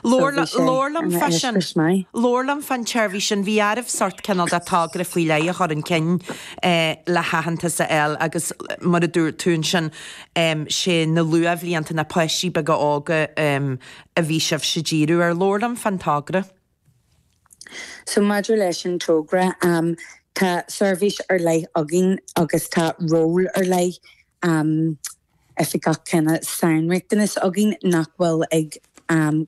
So bhí sé Labhair liom ina fá sin. eispéireas maith. Labhair liom fán tseirbhís sin. Bhí oraibh sórt cineál de togra faoi leith a chur chun cinn le haitheantas a fháil agus mar a dúirt tú ansin sé na luathbhlianta, na páistí beaga óga a bhí sibhse ag díriú ar. Labhair liom fán togra. So maidir leis an togra tá seirbhís ar leith againn agus tá ról ar leith Oifigeach cineál sainriachtanas againn nach bhfuil ag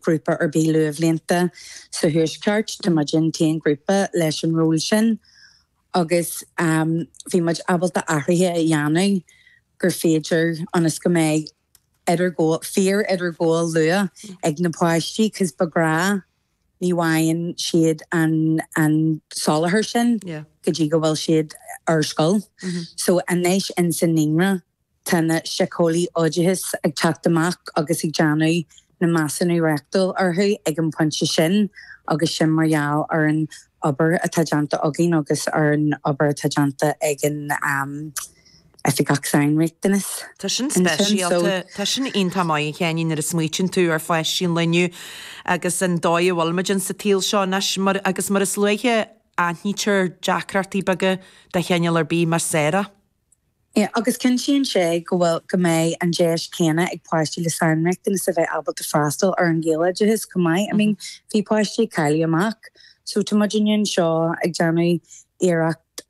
grúpa ar bith luathbhlianta sa Thuaisceart. Tá muid an t-aon ghrúpa leis an ról sin agus bhí muid ábalta athruithe a dhéanamh gur féidir ionas go mbeidh idirghabháil, fíor-idirghabháil luath ag na páistí cause de ghnáth, ní bhfaigheann siad an soláthar sin go dtí go bhfuil siad ar scoil. So anois ins an Naíonra Tá na Síceolaí Oideachais ag teacht amach agus ag déanamh na measúnú reachtúil orthu ag an bpointe sin agus sin mar gheall ar an obair atá déanta againn agus ar an obair atá déanta ag an Oifigeach Sainriachtanas Tá sin speisialta. Tá sin iontach maith, a Sheáinín, nuair a smaoitíonn tú ar pháistí an lae inniu agus an dóigh a bhfuilimid insa tsaol seo anois mar agus mar is luaithe a aithnítear deacrachtaí beaga de chineál ar bith mar is fearr é. agus cinntíonn sé go bhfuil, go mbeidh an deis céanna ag páistí le sainriachtanas a bheith ábalta freastal ar an Ghaeloideachas chomh maith. I mean bhí páistí ag cailleadh amach so tá muidinne anseo ag déanamh iarracht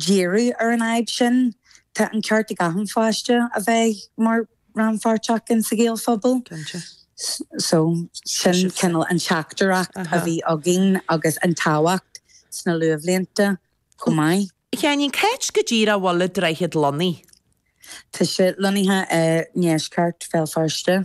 díriú ar an fhadhb sin. Tá an ceart ag achan pháiste a bheith mar rannpháirteach in sa Ghaelphobal. So sin cineál an teachtaireacht a bhí againn agus an tábhacht sna luathbhlianta. chomh maith. Cén, cá háit go díreach a bhfuil An Droichead lonnaithe? Tá sé lonnaithe i ndeisceart Bhéal Feirste.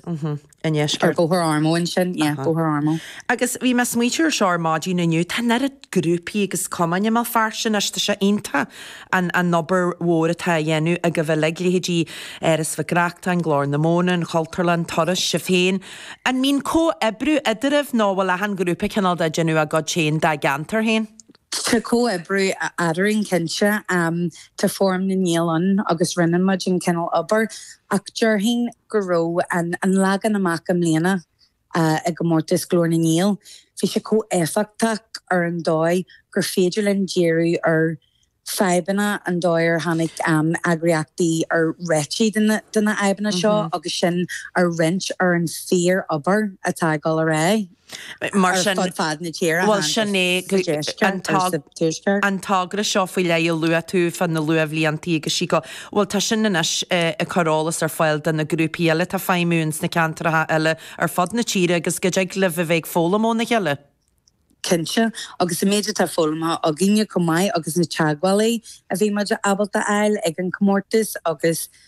I ndeisceart. Ar Bhóthar Ormeau ansin, yeah, Bóthar Ormeau. Agus bhí mé ag smaoitiú ar seo ar maidin inniu, tá an oiread grúpaí agus cumainn i mBéal Feirste anois, tá sé iontach an an obair mhór atá á dhéanamh agaibh uilig, leithéidí Áras Mhic Reachtain, Glór na Móna, an Chultúrlann, Turas, sibh féin. An mbíonn comhoibriú eadraibh nó a bhfuil achan ghrúpa cineál ag déanamh a gcuid féin dá gceantar féin? Tá comhoibriú eadrainn cinnte, tá Fóram na nGael ann agus roinneann muid an cineál obair ach déarfainn go raibh an leagan amach i mbliana i gcomórtas Glór na nGael, bhí sé chomh éifeachtach ar an dóigh gur féidir linn díriú ar fadhbanna, an dóigh ar tháinig eagraíochtaí ar réitigh de na fhadhbanna seo agus sin a roinnt ar an fíor obair atá ag dul ar aghaidh. Mar sin, bhuel sin é an togra seo faoi leith a luaigh tú fá na luathbhliantaí agus sí go, bhuel tá sin anois ag cur eolas ar fáil do na grúpaí eile atá ag feidhmiú ins na ceantracha eile ar fud na tíre agus go dtig libh a bheith ag foghlaim óna chéile. Cinnte, agus an méid atá foghlamtha againne chomh maith agus na teagmhálaí a bhí muid ábalta a fháil ag an chomórtas agus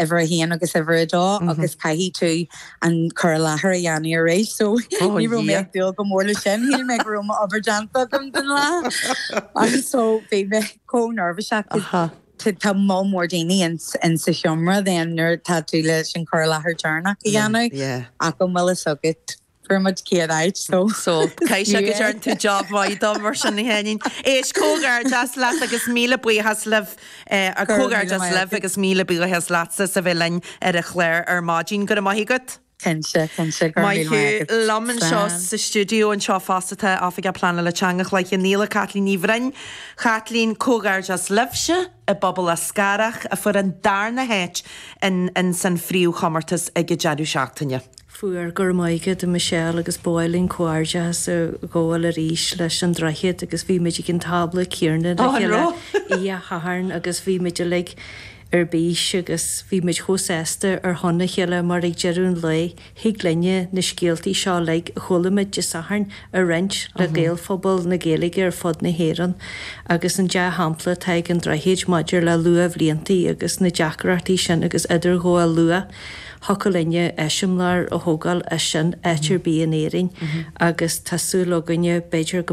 uimhir a haon agus uimhir a dó agus caithfidh tú an cur i láthair a dhéanamh arís so ní raibh mé ag dúil go mór leis sin, shíl mé go raibh m'obair déanta agam don lá agus so bhí mé chomh neirbhíseach cause tá moll mór daoine in sa sheomra then nuair atá tú leis an cur i láthair deireanach a dhéanamh ach an bhfuil fhios agat Fuair muid céad áit so. So, caithfidh sé go dtearn tú job mhaith de mar sin a Sheáinín. Éist, comhghairdeas leat agus míle buíochas libh, eh, Go raibh míle comhghairdeas maith libh agat. agus míle buíochas leatsa as a bheith linn ar an chlár ar maidin. Go raibh maith agat. Cinnte, cinnte, go raibh Maith míle thú. maith agat. Liom anseo Slán. sa stiúideo anseo fosta tá Oifigeach Pleanála Teanga Chloich Cheann Fhaola, Caitlín Ní Bhroin. Chaitlín, comhghairdeas libhse i bPobal Eascarrach a fuair an darna háit in san phríomhchomórtas ag an deireadh seachtaine. Fuair. Go raibh maith agat a Michelle agus ba mhaith linn comhghairdeachas a ghabháil arís leis an Droichead agus bhí muid ag an tábla céarna le chéile oíche Shathairn agus bhí muid uilig ar bís agus bhí muid chomh sásta ar shon a chéile mar ag deireadh an lae thig linne na scéaltaí seo uilig a chuala muid Dé Sathairn a roinnt le Gaelphobal na Gaeilge ar fud na hÉireann agus an dea-shampla atá ag an Droichead maidir le luathbhliantaí agus na deacrachtaí sin agus idirghabháil luath. thiocfadh linne eiseamláir a thógáil as sin áit ar bith in Éirinn agus tá súil againne b'fhéidir go